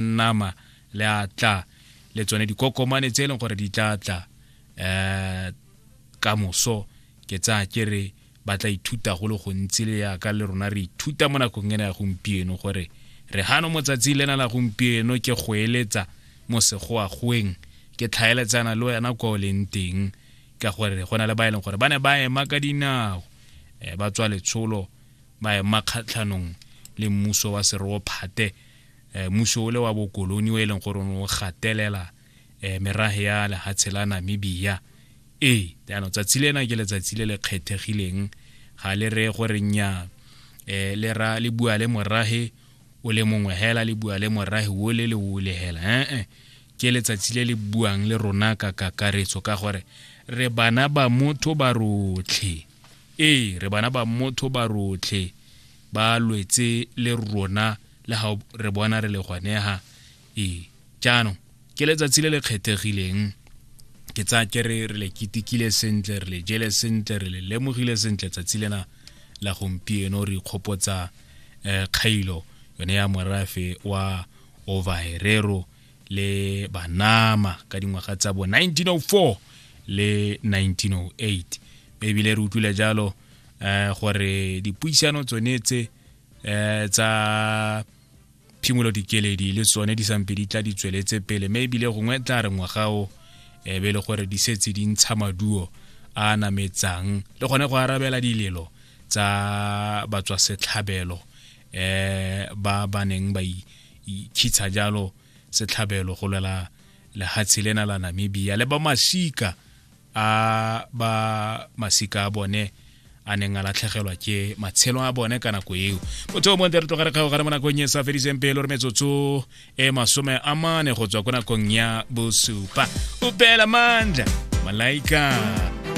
nama le a tla le tsone dikokomane tse e leng gore di tla tla um ka moso ke tsaya ke re ba tla ithuta go le gontsi le yaka le rona re ithuta mo nakong ena ya gompieno gore re gano motsatsi lena la gompieno ke go eletsa mo segoagweng ke tlhaeletsana le wena kwa o leng teng ka gore go na le ba e leng gore ba ne ba ema ka dinao um ba tswa letsholo ba ema kgatlhanong le mmuso wa seroophathe eh, mmuso ole wa bokoloni o e leng gore o gatelela eh, merage ya lehatshe la namibia ee jaanong tsatsi lena ke letsatsi le le kgethegileng ga le re gore nya eh, le ra le bua le morage o le mongwe hela le bua le morage o le le o le hela ee ke letsatsi le le buang le rona ka kakaretso ka gore re bana ba motho ba rotlhe ee re bana ba motho ba rotlhe ba lwetse le rona le ga re bona re le gwanega ee jaanong ke letsatsi le le kgethegileng ke tsaya ke re re le ketekile sentle re le jele sentle re le lemogile sentle tsatsi lena la gompieno re ikgopotsa um kgailo yone ya morafe wa ovaerero le banama ka dingwaga tsa bo 1904 le 1908 mme ebile re utlwile jalo um gore dipuisano tsone tse um tsa phimolo dikeledi le tsone di sampe di tla di tsweletse pele mme ebile gongwe tla re ngwagao e be e le gore di setse di ntsha maduo a nametsang le gone go arabela dilelo tsa batswasetlhabelo eh ba ba neng ba itshitsha jalo setlhabelo go lwela lehatshe lena la namibia le ba masika a ba masika a bone a neng a latlhegelwa ke matshelo a bone ka nako eo motho o monte re tlogare kgago gare mo nakong e sa fediseng pelo re metsotso e masome a mane go tswa ko nakong ya bosupa o beela mandla malaika